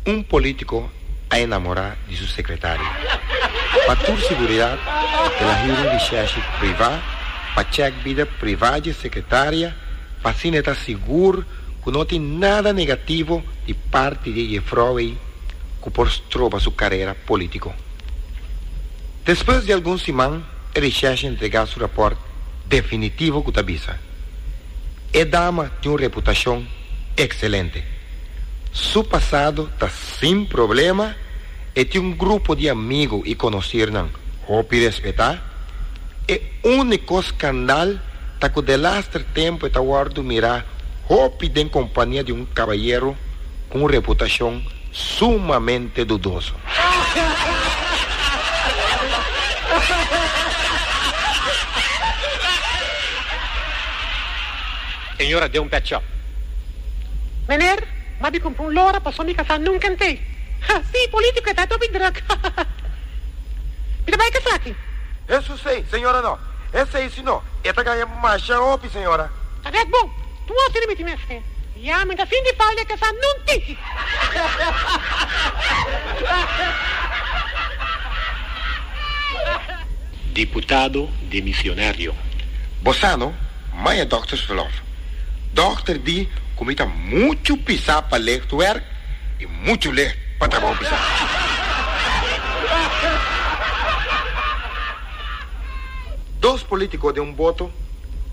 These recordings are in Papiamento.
Un politico a enamora di su secretaria. Pa tur siguridad el a hira un vishashi priva pa check bida priva dje secretaria pa asina e ta sigur cu no tin nada negativo di parti di e jefrouw ey cu por stroba su carera politico. Despues di algun siman e vishashi entrega su rapport definitivo cu ta bisa. E dama tin un reputashon ekselente. Su pasado ta sin problema, e tin un grupo di amigu i konosirnan hopi respetá. E úniko skandal ta ku delaster tempu e ta wòrdu mirá hopi den kompania di un kabayero. cu un reputacion sumamente dudoso. Señora deu un pet shop. Meneer, ma di compra un lora paso mi casa nunca n'tei. Ha, si, politico e ta dobi druk. Ha, ha, ha. Mi ta bay casa aki. He su sei, señora no. He sei sino e ta gaya masha hopi, señora. Ta bek bon. Tua te rimiti mester. Ya men ta fin di baile ke sa nun tiki. Diputado demisionario. Bosano, Maya Doctors Verlof. Dokter di ku mi ta muchu pisa pa leh tu werk i muchu leh pa trabou pisa. Dos politico den un boto,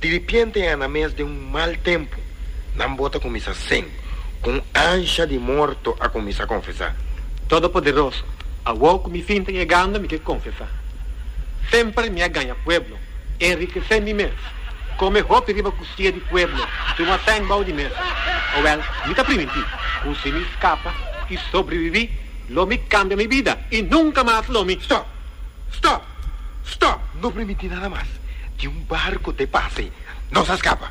diripiente e na mes den un mal tempo nan bota cuminsa sen, cu un ansha di morto a cuminsa confesa. Todopoderoso, awor cu mi fin ta yegando mi ke confesa, semper mi a gaña pueblo, enrikese mi mes, come hopi riba custiya di pueblo, tuma sèn bou di mes. Owel, mi ta priminti, cu si mi scapa y sobrevivi, lo mi cambia mi bida y nunca mas lo mi. Stop! Stop! Stop! No primiti nada mas. Tin un barco te pase. Nos a scapa.